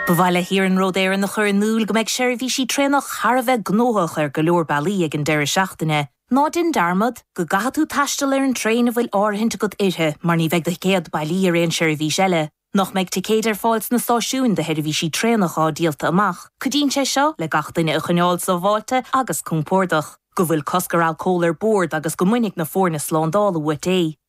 Ba mhaith le hIarnród Éireann a chur in iúl go mbeidh seirbhísí traenach thar a bheith gnóthach ar go leor bealaí ag an deireadh seachtaine. Ná déan dearmad go gcaithfidh tú taisteal ar an traein a bhfuil áirithint agat uirthi mar ní bheidh do thicéad bailí ar aon seirbhís eile. nach mbeidh ticéid ar fáil sna stáisiúin do sheirbhísí traenach atá díolta amach, cuidíonn sé seo le gach duine a choinneáil sábháilte agus compordach. go bhfuil cosc ar alcól ar bord agus go mbainfidh na foirne slándála uait é.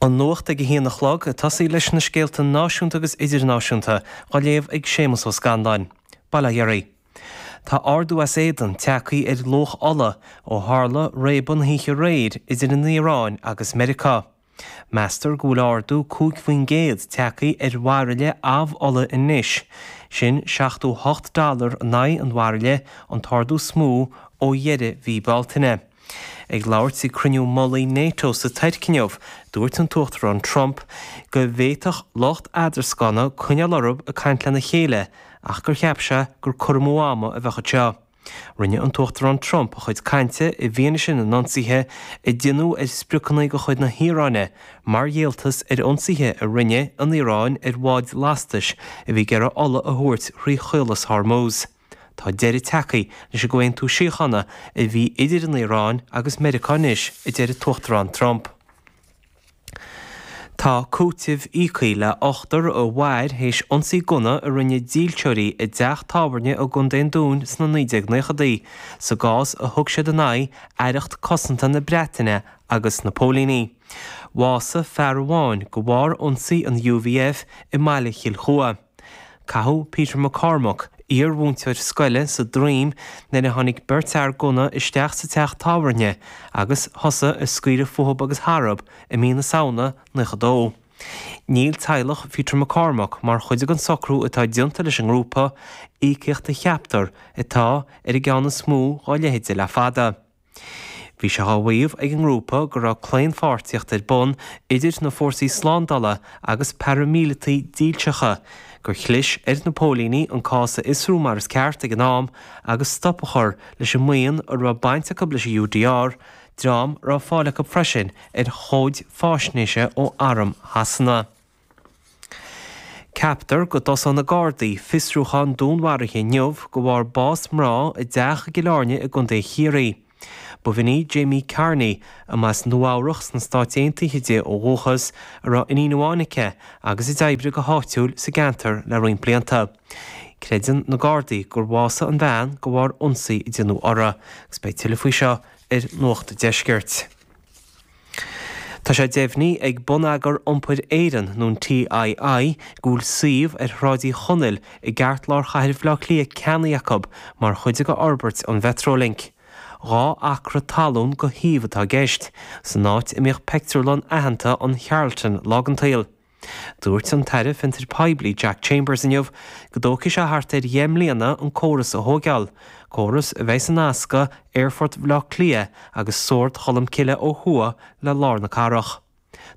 An nuacht ag a haon a chlog, ag tosaí leis na scéalta náisiúnta agus idirnáisiúnta, á léamh ag Séamus Ó Scanláin. Bail ó Dhia oraibh. Tá ardú as éadan tagthaí ar luach ola ó tharla réabadh na hoíche aréir idir an Iaráin agus Meiriceá. Meastar go bhfuil ardú 5 faoin gcéad tagthaí ar bhairille amhola anois, sin 78 dollar in aghaidh an bhairille, an t-ardú is mó ó dheireadh mhí Bealtaine. Ag labhairt ag cruinniú mullaigh Nato sa Tuirc inniu, dúirt an tUachtarán Trump go bhféadfadh lucht eadrascána coinneáil orthu ag caint lena chéile ach gur cheap sé gur cur amú ama a bheadh anseo. Rinne an tUachtarán Trump a chuid cainte i bhfianaise na n-ionsaithe a déanadh ar spriocanna de chuid na hIaráine mar dhíoltas ar ionsaithe a rinne an Iaráin ar bháid lastais a bhí ag iarraidh ola a thabhairt thrí Chaolas Hormuz. Tá deireadh tagthaí leis an gcomhaontú síochána a bhí idir an Iaráin agus Meiriceá anois, a deir an tUachtarán Trump. Tá cúiteamh íoctha le hochtar a mhair théis ionsaí gunna a rinne dílseoirí i dteach tábhairne i gContae an Dúin sna 1990idí, sa gcás a thug siad in aghaidh Aireacht Cosanta na Breataine agus na póilíní. Bhásaigh fear amháin de bharr ionsaí an UVF i mbaile Chill Chua. Caitheadh Peter McCormack, iar-mhúinteoir scoile, sa droim nuair a tháinig beirt fhear gunna isteach sa teach tábhairne agus thosaigh ag scaoileadh fúthub agus tharab i mí na Samhna 92. Níl teaghlach Pheter McCormack mar chuid den socrú atá déanta leis an ngrúpa, íocaíocht a cheaptar atá ar an gceann is mó dhá leithéide le fada. Bhí sé á mhaíomh ag an ngrúpa go raibh claonpháirtíocht ar bun idir na fórsaí slándála agus paraimíleataigh dílseacha, gur chlis ar na póilíní an cás a fhiosrú mar is ceart ag an am agus stop a chur leis an mbuíon a raibh baint acu leis an UDR, dream a raibh fáil acu freisin ar chomhaid faisnéise ó Arm Shasana. Ceaptar go dtosóidh na Gardaí fiosrúchán dúnmharaithe inniu de bharr bás mná i dteach i gCill Airne i gContae Chiarraí. Ba bhean í Jaimie Kearney, a mba as Nua Eabhrach sna Stáit Aontaithe di ó dhúchas, a raibh iníon amháin aici agus a d'oibrigh go háitiúil sa gceantar le roinnt blianta. Creideann na Gardaí gur bhásaigh an bhean de bharr ionsaí a déanadh uirthi agus beidh tuilleadh faoi seo ar Nuacht Deiscirt. Tá sé deimhní ag Bonneagar Iompair Éireann, nó an TII, go bhfuil suíomh ar Shráid Uí Chonaill i gceartlár chathair Bhaile Átha Cliath ceannaithe acu mar chuid d'fhorbairt an Mhetrolink. Dhá acra talún de shuíomh atá i gceist, san áit a mbíodh peictiúrlann aitheanta an Charlton, lá den tsaol. Dúirt an tAire Fiontar Poiblí Jack Chambers inniu go dtógfaidh sé thart ar dheich mbliana an córas a thóigeáil, córas a bheidh ag nascadh Aerfort Bhaile Átha Cliath agus Sord Cholmcille ó thuaidh le lár na cathrach.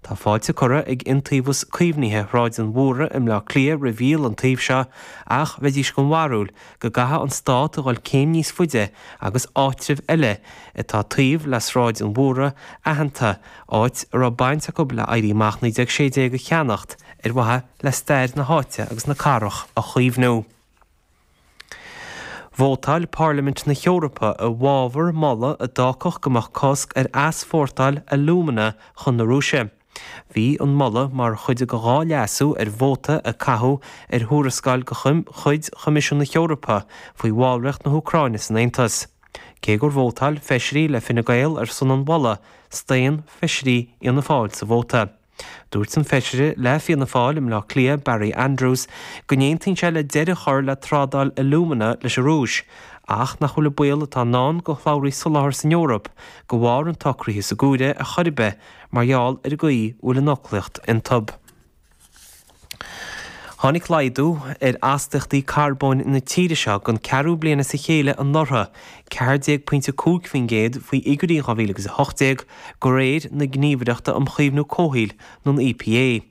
Tá fáilte curtha ag Iontaobhas Caomhnaithe Shráid an Mhúraigh i mBleá Cliath roimh dhíol an tsuímh seo ach bheidís den bharúil go gcaithfeadh an Stát a dhul céim níos faide agus áitribh eile atá taobh le Sráid an Mhúraigh aitheanta áit a raibh baint acu le Éirí Amach 1916 a cheannacht ar mhaithe le stair na háite agus na cathrach a chaomhnú. Vótáil Pairlimint na hEorpa i bhfabhar moladh a d'fhágfadh go mbeadh cosc ar easpórtáil alúmana chun na Rúise. Bhí an moladh mar chuid de dhá leasú ar vóta a caitheadh ar thuarascáil de chuid Choimisiún na hEorpa faoi bhallraíocht na hÚcráine san Aontas. Cé gur vótáil feisirí le Fine Gael ar son an mholta, staon feisirí Fhianna Fáil sa vóta. Dúirt an feisire le Fianna Fáil i mBleá Cliath, Barry Andrews, go n-aontaíonn sé le deireadh a chur le trádáil alúmana leis an Rúis ach nach bhfuil an baol atá i ndán do shlabhraí soláthair san Eoraip de bharr an tsocraithe á chur ar chor ar bith mar gheall ar an gcaoi a bhfuil an fhoclaíocht iontub. Tháinig laghdú ar astaíochtaí carbóin na tíre seo don cheathrú bliain as a chéile anuraidh, ceathair déag pointe a cúig faoin gcéad faoi fhigiúirí 2018, de réir na Gníomhaireachta um Chaomhnú Comhshaoil, nó an EPA.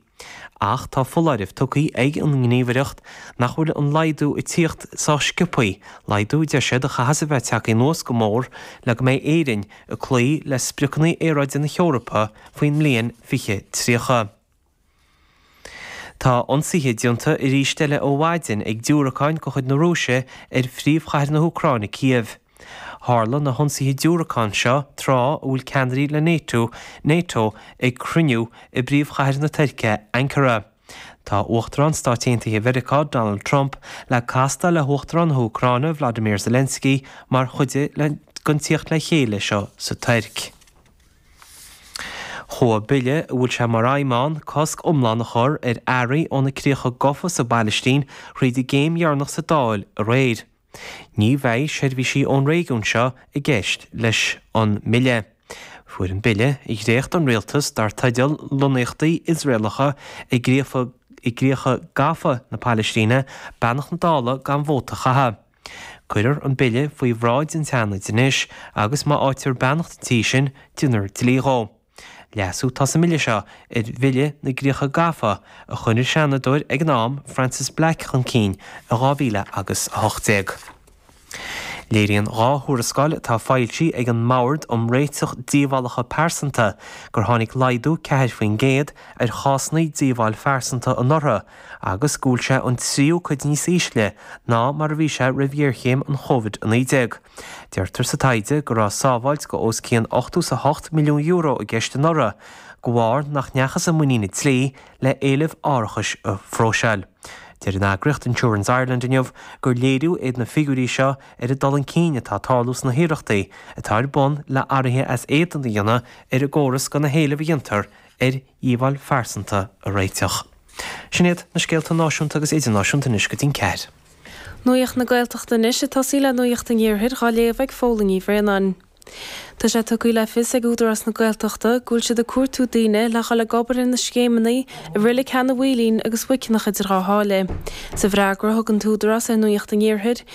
Ach tá foláireamh tugtha ag an nGníomhaireacht nach bhfuil an laghdú ag tíocht sách scioptha, laghdú, a deir siad, a chaithfeas a bheith tagtha anuas go mór le go mbeidh Éirinn ag cloí le spriocanna aeráide na hEorpa faoin mbliain 2030. Tá ionsaithe déanta arís eile ó mhaidin ag diúracáin de chuid na Rúise ar phríomhchathair na hÚcráine, Cív. Tharla na hionsaithe diúracán seo tráth a bhfuil ceannairí Nato, Nato, ag cruinniú i bpríomhchathair na Tuirce, Ankara. Tá Uachtarán Stáit Aontaithe Mheiriceá, Donald Trump, le castáil le hUachtarán na hÚcráine, Volodymyr Zelensky, mar chuid den tíocht le chéile seo sa Tuirc. Chuaigh bille a bhfuil sé mar aidhm ann cosc iomlán a chur ar earraí ó na críocha gafa sa bPailistín thríd an gcéim dheireanach sa Dáil aréir. Ní bheidh seirbhísí ón réigiún seo i gceist leis an mbille. Fuair an bille, a dhréacht an rialtas dar teideal Lonnaíochtaí Iosraelacha i gCríocha Gafa na Pailistíne, beannacht na Dála gan vóta a chaitheamh. Cuirfear an bille faoi bhráid an tSeanaid anois agus má fháitear beannacht an tí sin, déanfar dlí dhó. Leasú atá sa mbille seo ar Bhille na gCríocha Gafa a chuir an Seanadóir ag an am Frances Black chun cinn i 2018. Léiríonn dhá thuarascáil atá foilsithe ag an mBord um Réiteach Díobhálacha Pearsanta gur tháinig laghdú 4% ar chásanna díobháil phearsanta anuraidh agus go bhfuil sé an tríú cuid níos ísle ná mar a bhí sé roimh ghéarchéim an Covid-19. Deirtear sa taighde go raibh sábháilt de os cionn ochtó is a hocht milliún euro i gceist anuraidh de bharr nach ndeachthas i muinín an dlí le héilimh árachais a phróiseáil. Deir an eagraíocht Insurance Ireland inniu gur léiriú iad na figiúirí seo ar an dul chun cinn atá ag tarlú sna hiarrachtaí atá ar bun le hathruithe as éadan a dhéanamh ar an gcóras do na héilimh a dhéantar ar dhíobháil phearsanta a réiteach. Sin iad na scéalta náisiúnta agus idirnáisiúnta anois go dtí an ceathair. Nuacht na Gaeltachta anois ag tosaí le Nuacht an Iarthair dhá léamh ag Fódhla Ní Bhraonáin. Tá sé tugtha le fios ag Údarás na Gaeltachta go bhfuil siad ag cuartú daoine le dhul ag obair ina scéimeanna i reilig Sheanadh Mhaoilín agus Mhuiceanach idir Dhá Sháile. Sa bhfreagra a thug an tÚdarás ar Nuacht an Iarthair,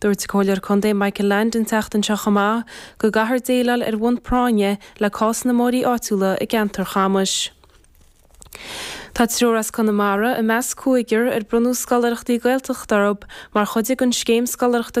Dúirt an Comhairleoir Contae Michael Leainde an tseachtain seo chomh maith go gcaithfear déileáil ar bhonn práinne le cás na mbóithrí áitiúla i gceantar Chamuis. Tá triúr as Conamara i measc cúigear ar bronnadh scoláireachtaí Gaeltachta orthu mar chuid den scéim scoláireachta